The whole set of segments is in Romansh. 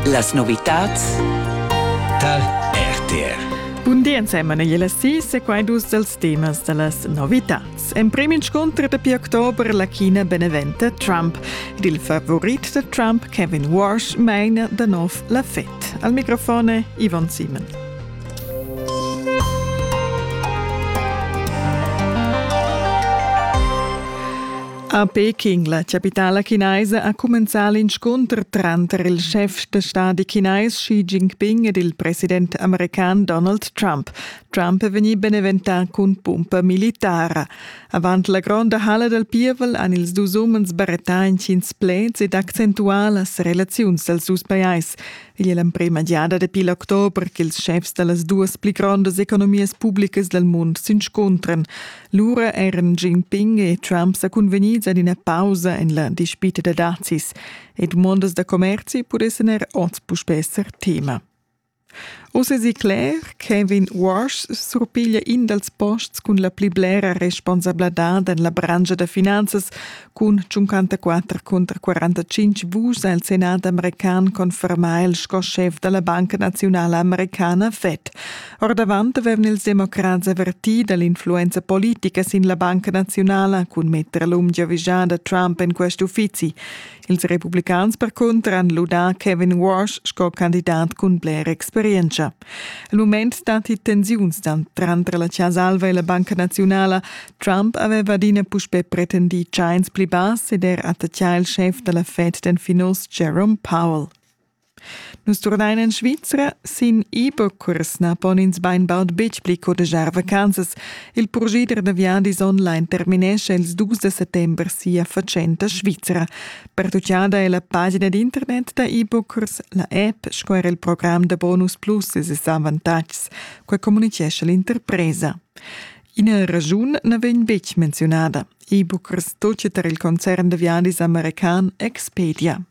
Las novitats tal RTR Bun di ensemen e la sis e quai dus dels temas da las novitats. En prim inscunter dapi october la China beneventa Trump ed il favorit da Trump Kevin Walsh maina da nov la Fed. Al microfone Ivan Simon. A Peking, la chapitala chinaisa, ha cumenzà l'inscunter tranter il chef da stadi chinais Xi Jinping ed il president american Donald Trump. Trump è vegnì beneventà cun pumpa militara. Avant la gronda halla dal pievel han ils dus umens barettà intgins pleds ed accentuà las relaziuns dals dus pajais. Igl è l'emprima giada dapi l'october ch'ils chefs da las duas pli grondas economias publicas dal mund s'inscuntran. Lura eran Jinping e Trump sa cunvegnids ad ina pausa en la dispita da dazis e dumondas da commerzi pudessan er oz puspè esser tema. Uss èsi cler, Kevin Walsh surpiglia in dals posts cun la pli blera responsabladad en la branscha da finanzas Cun 54 cunter 45 vus ha il Senat american confermà il sco schef da la Banca Naziunala Americana Fed. Ordavant avevano ils democrats avvertì dall'influenza politica sin la Banca Naziunala cun mettere l'unghia vigiada Trump en questi uffizi. Ils republicans per cunter han ludà Kevin Walsh sco candidat cun bler experienza. El mument datti tensiuns tranter la Chasa Alva e la Banca Naziunala. Trump aveva adina puspè pretendì tschains pli bass ed er attacchà il schef da la Fed, den Finos, Jerome Powell. Nus turnain en Svizra. Sin e-bookers na pon ins bainbaud betg pli codegiar vacanzas. Il progider da viadis online terminescha ils dus da settember sia fatschenta Svizra. Pertuchada è la pagina d'internet da e-bookers, la app sco er il program da bonus plus e ses avantatgs, quai communitgescha l'interpresa. Ina ragiun na vegn betg menziunada. E-bookers tochet er il concern da viadis american Expedia.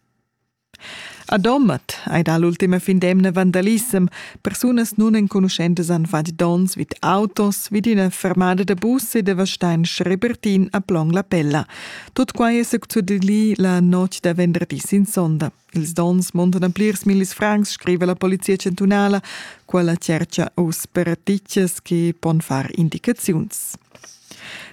A Domat ei dall'ultima fin d'emna vandalisem. Persunas nunenconuschentas han fatg donns vid autos, vid ina fermada da bus e devastein Schrebertin a Plong la Pella. Tut quai è succedì la notg da venderdi sin sonda. Ils donns montan plirs millis francs, scrive la polizia chantunala, quella cerca uss per titges che pon far indicaziuns.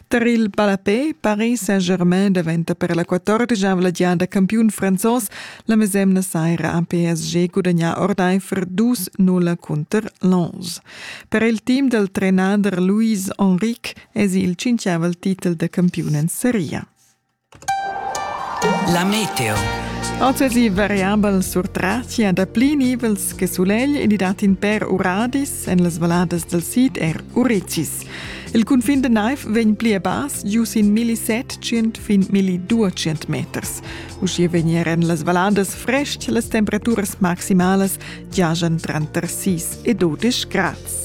Tar il ballapé Paris Saint-Germain daventa per la quatordegiavla giada campiun franzos la mesemna saira ha PSG gudagnà ordaifer dus nulla cunter Lens. Per il team dal trenader Luis Henrique èsi il tschintgavel titel da campiun en seria. La meteo. Occasi variabel surtratia da pli nivels che sulegl ed i dat in per uradis en las valadas dal sid er urecis. Il cunfin da naiv vegn pli a bas, giu sin milli setgient fin milli duecent meters. Uschia vegner en las valadas frestg las temperaturas maximalas giajan tranter 6 e 12 grads.